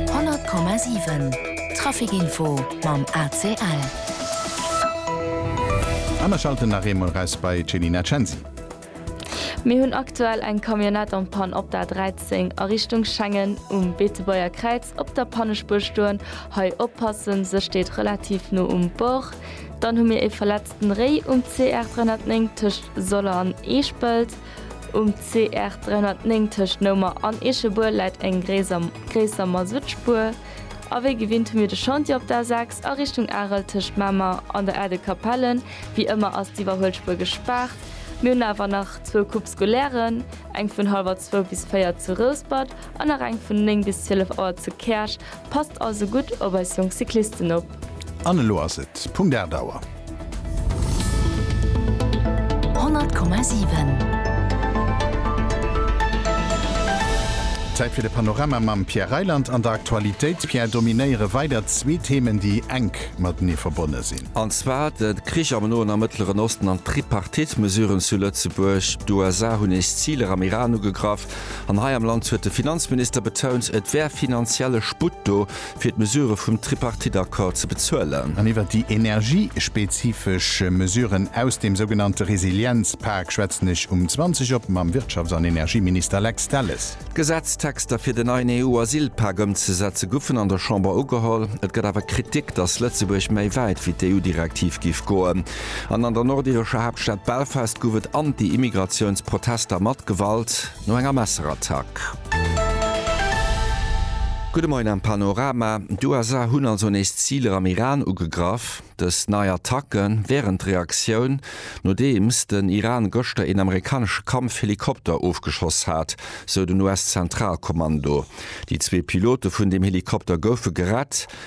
100,7 Traficinfo mam ACL. A mer schalten nach eemol erais bei d'Chelina Censi. Mir hunn aktuell eng Camionnette en panne op der 13 a Richtung Schengen um Beetebuerger Kräiz op der Pannespuer stoen. Hei oppassen, se steet relativ no um Bord. Dann hu mir ee verletzten Réi um CR 309 tëscht Soller an Eeschpelt. Um CR 309 tëscht Noumer an Eechebuer läit eng gréisser Masutspuer. A wéi gewinnt hu mir de Chantier op der A6 a Richtung Arel tëscht Mamer an der Aide de Capelle. Wéi ëmmer ass d'Iwwerhuelspuer gespaart. Mir hunn awer nach zwou Coupes scolairen, eng vun hallwer zwou bis véier zu Rouspert An nach eng vun 9 bis 12 Auer zu Käerch. Passt also gutt op eis jonk Cyclisten op. An elo ass et Punkt 8 Auer. 100,7. Zäit fir de Panorama mam Pierre Reyland an der Aktualitéit. Pierre, dominéiere weider zwee Themen, déi enk matenee verbonne sinn. An zwar de Krich am Noen a Mëttleren Osten an d'Tripartite-Mesuren zu Lëtzebuerg. D'USA hunn nees Ziler am Iran ugegraff. An hei am Land huet de Finanzminister betount, et wär finanzielle Sputt do, fir d'Mesurë vum Tripartite-Accord ze bezuelen. An iwwert déi energiespezifesch Mesuren aus dem sougenannte Resilienzpak schwätzen ech um 20 op mam Wirtschafts an Energieminister Lex Delles. D'Gesetztexter fir den neien EU-Asylpak ëmzesetze goufen an der Chamber ugeholl. Et gëtt awer Kritik, datt Lëtzebuerg méi wäit wéi d'EU-Direktiv géif goen. An an der nordirescher Haaptstad Belfast gouf et Anti-Immigratiouns-Protester mat Gewalt no enger Messerattack. Gudde Moien am Panorama. D'USA hunn also nees Ziler am Iran ugegraff. Dës nei Attacke wären d'Reaktioun, nodeems den Iran gëschter een amerikanesche Kampfhelikopter ofgeschoss hat, sou den US-Zentralkommando. Déi zwee Pilote vun deem Helikopter goufe gerett.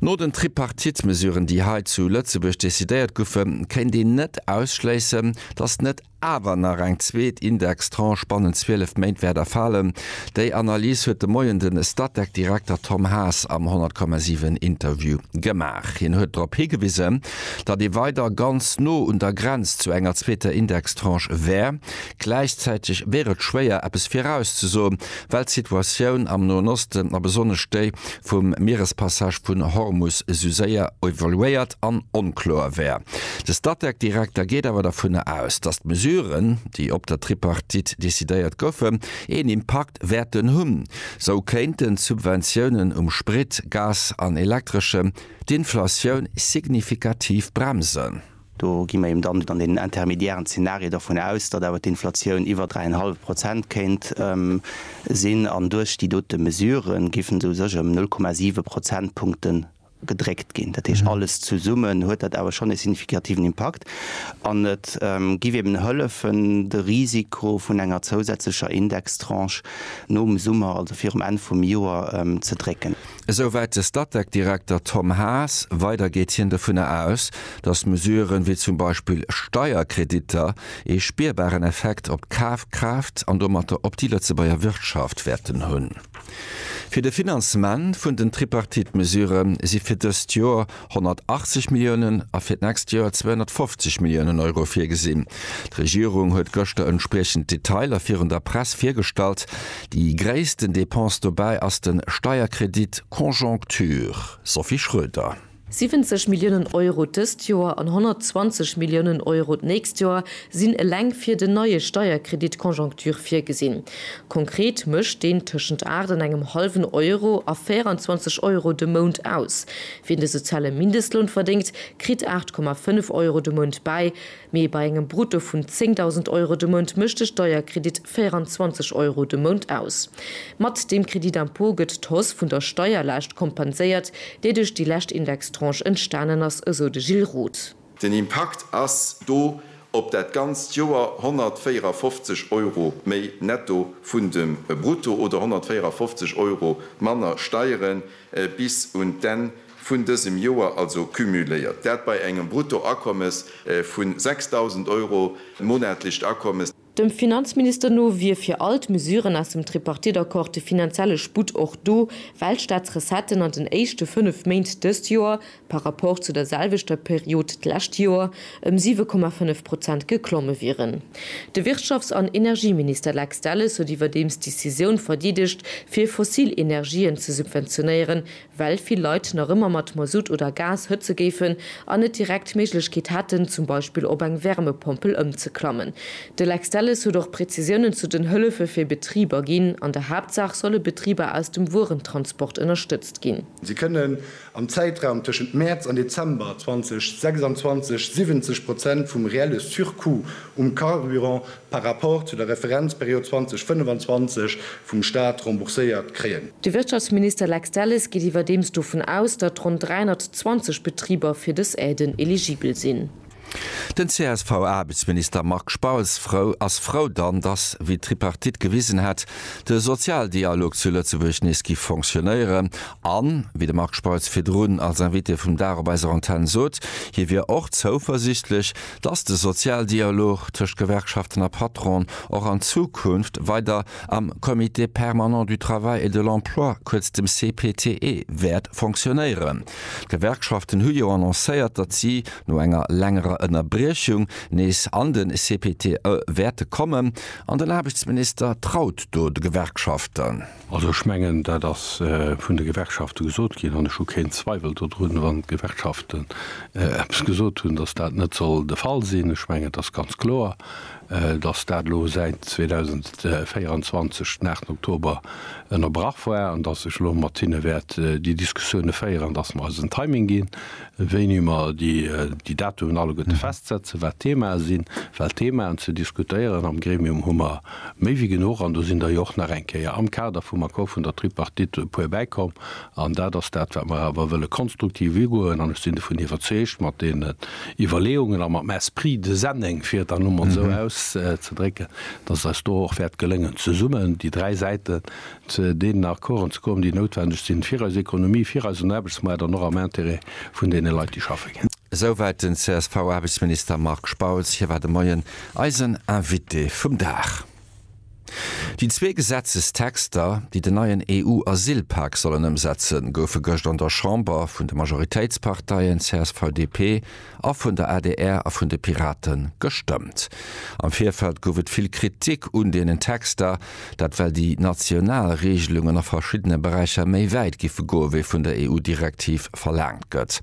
No den Tripartite-Mesuren, déi hei zu Lëtzebuerg decidéiert goufen, kéint een net ausschléissen, datt net awer nach eng zweet Indextranche bannent 12 Méint wäert erfalen. Déi Analys huet de Moien de Statec-Direkter Tom Haas am 100,7 Interview gemaach. Hien huet drop higewisen, datt ee weider ganz no un der Grenz zu enger zweeter Indextranche wär, Gläichzäiteg wier et schwéier eppes virauszesoen, well d'Situatioun am Noen Osten a besonnesch déi vum Mierespassage vun Hormus esou séier evoluéiert an onkloer wär. De Statec-Direkter geet awer dovunner aus, datt d'Mesuren, déi op der Tripartite decidéiert goufen, een Impakt wäerten hunn. Sou kéinten d'Subventiounen um Sprit, Gas an Elektreschem d'Inflatioun signifikativ bremsen. Do gi mer eben dann an deenen intermédiären Zeenarie dovun aus, datt awer d'Inflatioun iwwer dräienhallef Prozent kéint sinn an duerch déi dote Mesurë géifen se u sech ëm null Komma siwe Prozentpunkte gedréckt ginn. Dat heescht, alles zesummen huet dat awer schonn e signifikativen Impakt an et géif eben hëllefen, de Risiko vun enger zousätzlecher Indextranche nom Summer, also virum Enn vum Joer, ze drécken. Esou wäit de Statec-Direkter Tom Haas. Weider geet hien dovunner aus, datt Mesuren, wéi zum Beispill Steierkreditter, ee spierbaren Effekt op d'Kafkraaft an domatter op déi Lëtzebuerger Wirtschaft wäerten hunn. Fir de Finanzement vun den Tripartite-Mesurë si fir dëst Joer 180 Milliounen a fir d'nächst Joer 250 Milliounen Euro virgesinn. D'Regierung huet gëschter entspriechend Detailer virun der Press virgestallt. Déi gréissten Depense dobäi ass de Steierkredit Conjoncture. Sophie Schröder. 70 Milliounen Euro dëst Joer an 120 Milliounen Euro d'nächst Joer sinn eleng fir den neie Steierkredit Conjoncture virgesinn. Konkret mécht deen tëschent 8 an engem hallwen Euro a 24 Euro de Mount aus. Wien de soziale Mindestloun verdéngt, kritt 8,5 Euro de Mount bäi, mee bei engem Brutto vun 10.000 Euro de Mount mécht de Steierkredit 24 Euro de Mount aus. Mat deem Crédit d'impôt gëtt d'Hausse vun der Steierlaascht kompenséiert, déi duerch déi lescht Indextranche entstanen ass, esou de Gilles Roth. Den Impakt ass do op dat ganzt Joer 154 Euro méi netto vun dem Brutto oder 154 Euro manner Steiere bis un d'Enn vun dësem Joer, also cumuléiert. Dat bei engem Bruttoakommes vu 6.000 Euro, monatlecht Akommes. Dem Finanzminister no wier fir all d'Mesuren aus dem Tripartite-Accord de finanzielle Sputt och do, well d'Staatsrecetten an den éischte fënnef Méint dëst Joer, par rapport zu der selwechter Period d'lescht Joer, ëm 7,5 Prozent geklomme wieren. De Wirtschafts an Energieminister Lex Delles huet iwwerdeems d'Decisioun verdeedegt, fir fossil Energien ze subventionéieren, well vill Leit nach ëmmer mat Masutt oder Gas hëtze géifen an net direkt d'Méiglechkeet hätten, zum Beispill op eng Wärmepompel ëmzeklammen. De Lex Delles huet och Prezisiounen zu den Hëllefe fir Betriber ginn. An der Haaptsaach solle Betriber aus dem Wuerentransport ënnerstëtzt ginn. Si kënnen am Zäitraum tëschent Mäerz an Dezember 2026 70 Prozent vum reelle Surcoût um Carburant par rapport zu der Referenzperiod 2025 vum Stat rembourséiert kréien. De Wirtschaftsminister Lex Delles geet iwwerdeems dovun aus, datt ronn 320 Betriber fir dës Aiden eligibel sinn. Den CSV-Aarbechtsminister Marc Spautz ass frou dann, datt, wéi d'Tripartite gewisen hätt, de Sozialdialog zu Lëtzebuerg nees giff fonctionéieren an, wéi de Marc Spautz virdrun als Invité vum Dag op eiser Antenn sot, hie wier och zouversiichtlech, dass de Sozialdialog tëscht Gewerkschaften a Patron och an Zukunft weider am Comité permanent du travail et de l'emploi, kuerz dem CPTE, wäert fonctionnéieren. D'Gewerkschaften hu jo annoncéiert, datt si, no enger längerer Ënnerbriechung, nees an de CPTE wäerte kommen. An den Aarbechtsminister traut do de Gewerkschaften. Also ech mengen, dat ass vun de Gewerkschafte gesot ginn, an ech hu keen Zweiwel dodrun, wann d'Gewerkschaften eppes gesot hunn, dass dat net soll de Fall sinn. Ech mengen, et ass ganz kloer, dass dat elo säit 2024 den 8 Oktober ënnerbrach war an dass ech elo mat hinne wäert déi Diskussioune féieren an dass mer eis en Timing ginn, wéini mer déi Datumen alleguerte festsetzen, wat d'Themae sinn. Well d'Themaen ze diskutéieren am Gremium hu mer. Méi wéi genuch, an do sinn der jo och nach eng Kéier am Kader vum Accord vun der Tripartite e puer bäikomm. An dat ass dat, wat mer awer wëlle konstruktiv ugoen. An ech sinn dovun iwwerzeegt, mat deenen Iwwerleeungen a matem Esprit de Senneng, fir et dann emol esou auszedrécken, dass et eis do och wäert gelëngen, zesummen déi dräi Säiten zu deenen Accorden ze kommen, déi noutwendeg sinn, fir eis Economie, fir eisen Aarbechtsmaart an och am Intérêt vun deene Leit, déi schaffe ginn. Esouwäit den CSV-Aarbechtsminister Marc Spautz. Hie war de Moien eisen Invité vum Dag. Déi zwee Gesetzestexter, déi den neien EU-Asylpak sollen ëmsetzen, goufe gëscht an der Chamber vun de Majoritéitsparteien CSV-DP a vun der adr a vun de Pirate gestëmmt. Am Virfeld gouf et vill Kritik un deenen Texter, Dat well déi national Reegelungen a verschiddene Beräicher méi wäit giffe goe wéi vun der EU-Direktiv verlaangt gëtt.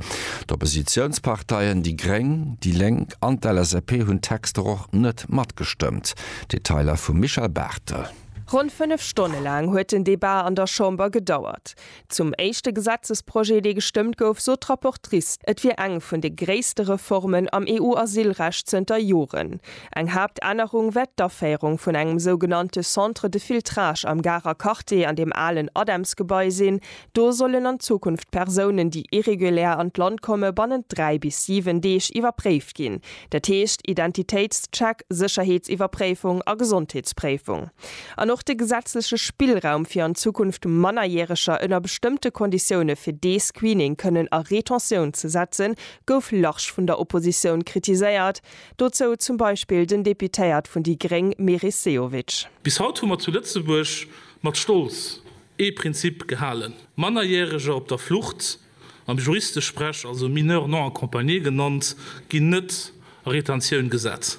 D'Oppositiounsparteien, déi Gréng, déi Lénk an d'LSAP hunn d'Texter och net matgestëmmt. Detailer vum Michel Barthel. Ronn fënnef Stonne laang huet den Debat an der Chamber gedauert. Zum éischte Gesetzesprojet, dee gestëmmt gouf, sot d'Rapportrice, et wier eng vun de gréisste Reformen am EU-Asylrecht zënter Joren. Eng Haaptännerung wär d'Aféierung vun engem sougenannte Centre de filtrage am Garer Quartier an deem alen ADEMS-Gebai sinn. Do sollen an Zukunft Persounen, déi irregulär an d'Land komme, bannent dräi bis siwen Deeg iwwerpréift ginn, Dat heescht, Identitéitscheck, Sécherheetsiwwerpréifung a Gesondheetspréifung. An och de gesetzleche Spillraum, fir an Zukunft Mannerjäreger ënner bestëmmte Konditioune fir dee Screening kënnen a Retentioun ze setzen, gouf large vun der Oppositioun kritiséiert, dozou zum Beispill den Deputéiert vun déi gréng Meris Sehovic. Bis haut hu mer zu Lëtzebuerg mat Stolz ee Prinzip gehalen, Mannerjäreger op der Flucht am Juristesprech also Mineurs non accompagnés genannt, ginn net a Retentioun gesat.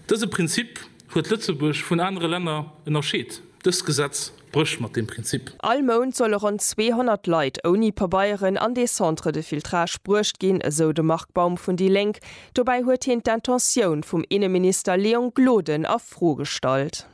Dëse Prinzip huet Lëtzebuerg vun anere Länner ënnerscheet. Dëst Gesetz brécht mat deem Prinzip. All Mount solle ronn 200 Leit ouni Pabeieren an dee Centre de filtrage bruecht ginn, esou de Marc Baum vun déi Lénk. Dobäi huet hien d'Intentioun vum Inneminister Léon Gloden a Fro gestallt.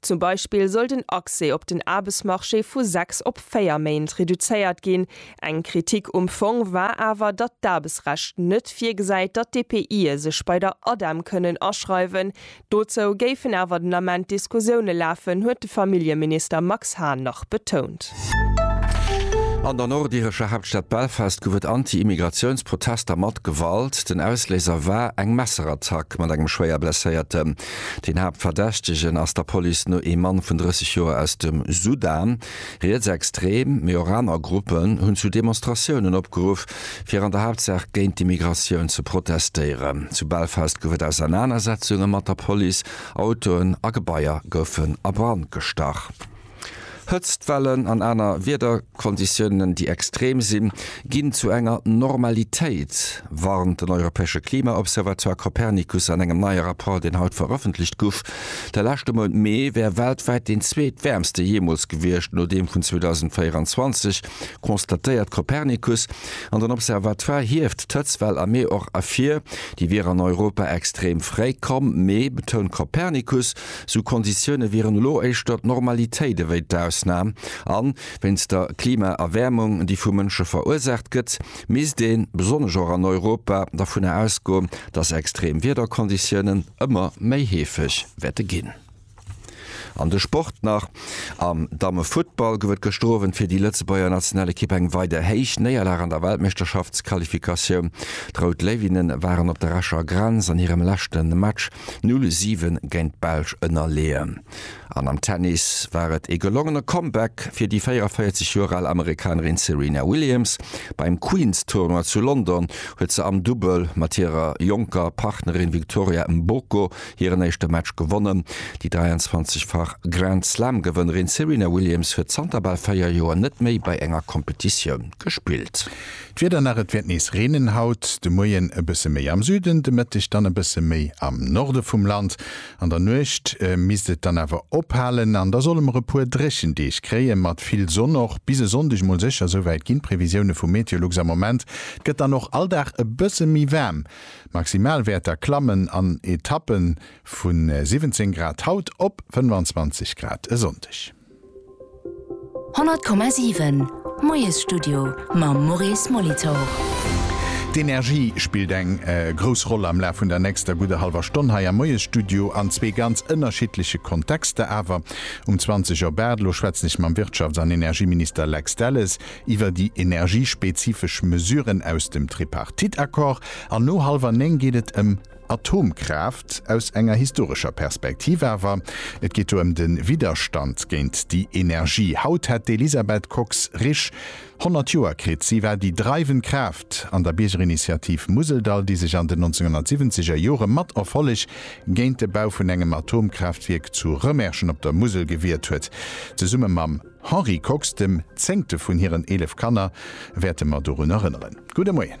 Zum Beispill soll den Accès op den Aarbechtsmarché vu sechs op véier Méint reduzéiert ginn. Eng Kritik um Fong war awer, datt d'Aarbechtsrecht net virgesäit, datt d'EPIe sech bei der ADEM kënnen aschreiwen. Dozou géifen awer den Ament Diskussioune lafen, huet de Familljeminister Max Hahn nach betount. An der nordirescher Haaptstad Belfast gouf et Anti-Immigratiouns-Protester mat Gewalt. Den Ausléiser war eng Messerattack mat engem schwéier Blesséierten. Den Haaptverdächtegen ass der Police no ee Mann vun 30 Joer aus dem Sudan. Rietsextrem, mee och aner Gruppen hunn zu Demonstratiounen opgeruff, fir an der Haaptsaach géint d'Immigratioun ze protestéieren. Zu Belfast gouf et Ausernanersetzunge mat der Police, Autoen a Gebaier goufen a Brand gestach. Hëtztwellen an aner Wiederkonditiounen, déi extrem sinn, ginn zu enger Normalitéit, warnt den europäesche Klima-Observatoire Copernicus an engem neie Rapport, deen haut verëffentlecht guff. De leschte Mount Mee wär weltwäit deen zweetwäermste jeemools gewiescht, no deem vun 2024, constatéiert Copernicus. An den Observatoire hieft d'Hëtztwell am Mee och ervir, déi wier an Europa extrem fréi komm. Mee, betount Copernicus, Sou Konditioune wieren elo éischter d'Normalitéit ewéi d'Ausnam. A wéinst der Klimaerwäermung, déi vu Mënsche verursaacht gëtt, misst een, besonnesch och an Europa, dovunner ausgoen, datt extrem Wiederkonditiounen ëmmer méi heefeg wäerte ginn. An de Sport nach, Am Dammefuttball gouf et gëschter Owend fir déi Lëtzebuerger Nationalekipp eng weider héich Néierlag an der Weltmeeschterschaftsqualifikatioun. D'Rout Léiwinnen waren op der Escher Grenz an hirem leschte Match Null 7 géint d'Belsch ënnerleeën. An am Tennis war et ee gelongene Comeback fir déi 44 Joer al Amerikanerin Serena Williams. Beim Queen's Tournoi zu London huet se am Dubbel mat hirer jonker Partnerin Victoria Mboko hiren éischte Match gewonnen. Déi 23-fach Grand-Slam-Gewënnerin Serena Williams huet zanter bal véier Joer net méi bei enger Competitioun gespillt. D'Wieder nach, Et wäert nees reenen haut de Moien, e bësse méi am Süden, de Mëtteg dann e bësse méi am Norde vum Land. An der Nuecht misst et dann awer ophalen an da solle mer e puer dréchen Deeg kréie mat vill Sonn. Och bis e Sonndeg mol sécher, souwäit ginn d'Previsioune vu Meteolux am Moment. Et gëtt dann och all Dag e bësse méi waarm, d'Maximalwäerter klammen an Etappe vu 17 Grad haut op 25 Grad e Sonndeg. 100,7, Moiesstudio mam Maurice Molitor. D'Energie spillt eng grouss Roll am Laf vun der nächster gudder hallwer Stonn hei am Moiesstudio, an zwee ganz ënnerschiddleche Kontexter awer. Um 20 Auer Baartelo schwätzen ech mam Wirtschafts an Energieminister Lex Delles iwwer déi energiespezifesch Mesuren aus dem Tripartite-Accord an no hallwer néng geet et ëm Atomkraaft aus enger historescher Perspektiv awer, et geet do ëm de Widderstand géint déi Energie. Haut hätt d'Elisabeth Kox-Risch 100 Joer kritt. Si war déi dreiwend Kraaft an der Biergerinitiativ Museldall, déi sech an den 1970 er Jore mat Erfolleg géint de Bau vun engem Atomkraaftwierk zu Rëmerschen op der Musel gewiert huet. Zesumme mam Henri Kox, dem zéngte vun hiren 11 Kanner, wäerte mer dorun erënneren. Gudde Moien.